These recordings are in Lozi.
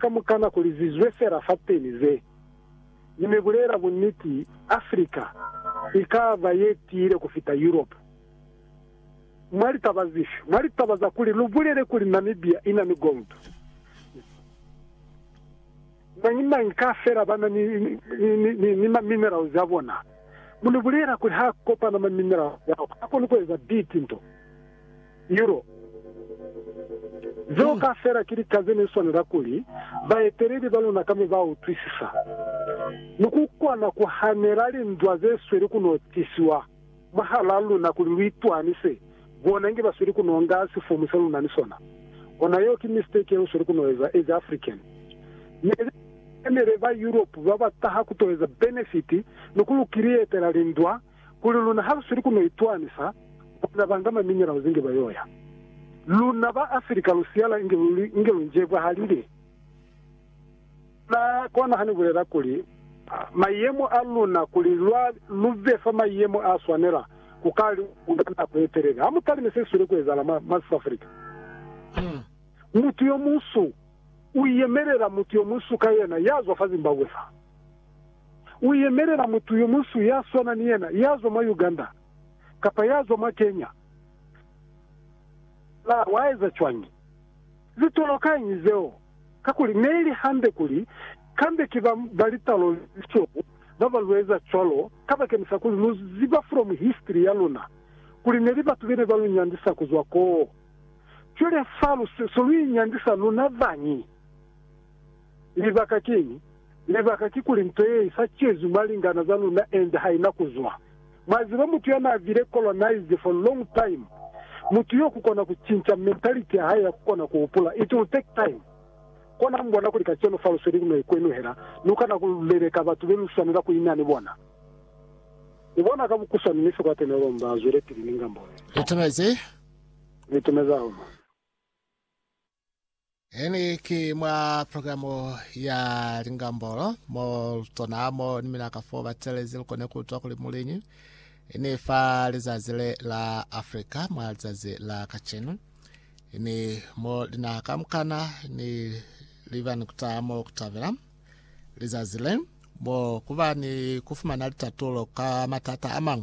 Kamukana kuli zizwe fela fateni ze. Mi mi bulela buniti, Africa ikaba ye tiile kufita Europe. Mwa litaba zifi? Mwa litaba za kuli lu bulele kuli Namibia ina ni gold. Mañi mañi ka fela bana ni, ni, ni, ni, ni ma minerals a bona. Mu ni bulela kuli ha kopana ma minerals ao, ha koni kueza bitinto. Euro. Zeo kaufela ki lika ze ne swanela kuli baeteleli ba luna kamo ba utwisisa, ni ku kona ku hanela lindwa ze sweli ku no tisiwa mwahalaa luna kuli lu itwanise bona inge ba sweli ku no nga sifomu se lu na ni sona. Ona yeo ki mistake ye lu sweli ku no eza as African. Ne li enele ba Europe ba ba taha ku to eza benefit ni ku lu kirietela lindwa, kuli luna ha lu sweli ku no itwanisa, bona ba nga maminerals inge ba yoya. Luna ba Africa lu siyala inge lu, inge lu njebwahalile. Luna kona ha ni bulela kuli, Mayemo a luna, kuli lwa, lu be fa mayemo a swanela, ku ka li ku nga nako ye telele. Ha mu talime se si sweli ku ezahala mwa, mwa South Africa. Ha mutu yo munsu u yemelela mutu yo munsu ka yena ya zwa fa Zimbabwe fa. u yemelela mutu yo munsu ya swana ni yena ya zwa mwa Uganda kapa ya zwa mwa Kenya. Na wa eza cwañi ze tolokañi zeo? Kakuli ne li hande kuli kambe ki ba ba litalo le lisweu ba ba lu eza cwalo, kabakeñisa kuli lu ziba from history ya luna kuli ne li batu be ne ba lu nyandisa ku zwa koo. Cwale fa lu so lu inyandisa luna bañi? Libaka kiñi? Libaka kikuli nto ye isa ciezwi mwa lingana za luna ende haina kuzwa. Mwa ziba mutu ya na bile colonized for long time, mutu yo kukona ku cinca mentality ya hae ya kukona ku hupula, it will take time. Kona mu bona kuli kacenu fa lu sweli no ikwenuhela, lu kana ku leleka batu be lu swanela ku ina ni bona. Mu bona ka bukuswani ni sikwate ne lomba a zwele pili ni ngambolo ye. Itumezi. Ni itumezi hahulu. Eni ki mwa programu ya lingambolo mo tona mo ni mina ka fo batelezi likone kutwa kuli muliñi ini fa lizazi le la Afrika mwa lizazi la kacenu ini mo linaha kamukana ni livani kutaha mo kutabela lizazi le mo kuba ni kufumana litatulo ka matata amang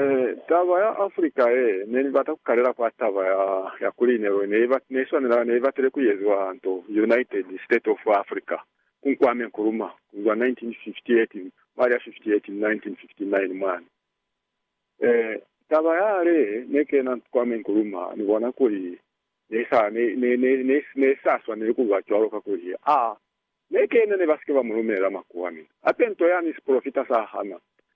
Ee, taba ya Afrika ye ne ni bata ku kalela kwa taba ya, ya kuli ne, ne, iba, ne iswanela, ne ibatile ku eziwa nto, United State of Africa, ku Nkwame Nkrumah, ku zwa 1958, mwa li ya 58 ni 1959 mwani. Ee, taba yale ne kena Nkwame Nkrumah, ni bona kuli ne sa, ne, ne, ne, ne, ne sa swaneli ku ba cwalo, kakuli a ne kena, ne ba sike ba mu lumelela makuwa. Mi hape nto yani sipolofita sa hana,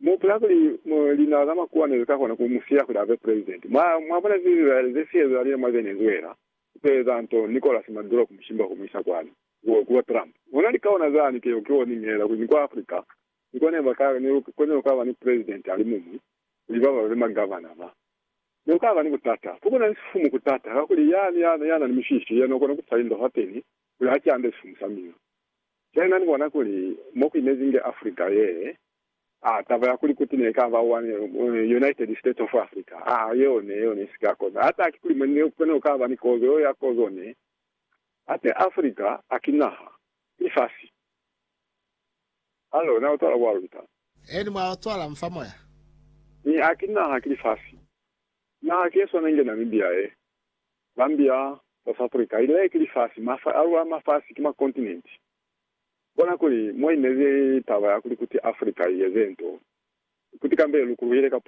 Mu hupula kuli lina za makuwa ne li ka kona ku mu siya kuli a be president? Mwa, mwa bona ze Israele ze si ezahalizile mwa Venezuela, ku to eza nto Nicolas Maduro ku mu shimba ku mu isa kwani, ku bo Trump. Ona lika ona za ni ke, keo ni ngelela kuli ni kwa Africa, ni kwa ne ba ka, ne lu konile ku ka ba ni president a li muñwi, kuli ba ba be ma governor ba. Ne ku ka ba ni butata. Ku buna ni sifumu ku tata, kakuli yani ya, ya na ni mishishi, yena u kona ku fa indohoteni kuli ha ki ande sifumu sa mina. Yena ni bona kuli mo ku imezi nge Africa ye, a taba ya kuli kuti ne ka ba one United States of Africa, a yeo ne yona i si ka koza. Ha taki kuli mo ne ku ne ku ka ba ni kozo yeo ya kozo ne, hate Africa ha ki naha, ki lifasi. Hallo, na utwala kwa luta? Eeni, mwa utwala, mu fa moya. Mi ha ki naha, ki lifasi. Naha ki ye swana inge Namibia ye. Zambia, South Africa, ile ki lifasi, mafa a lwa mafasi ki makontinenti. Bona kuli mo inezi taba ya kuli kuti Africa i eze nto, kuti kambe lu kuluhile ka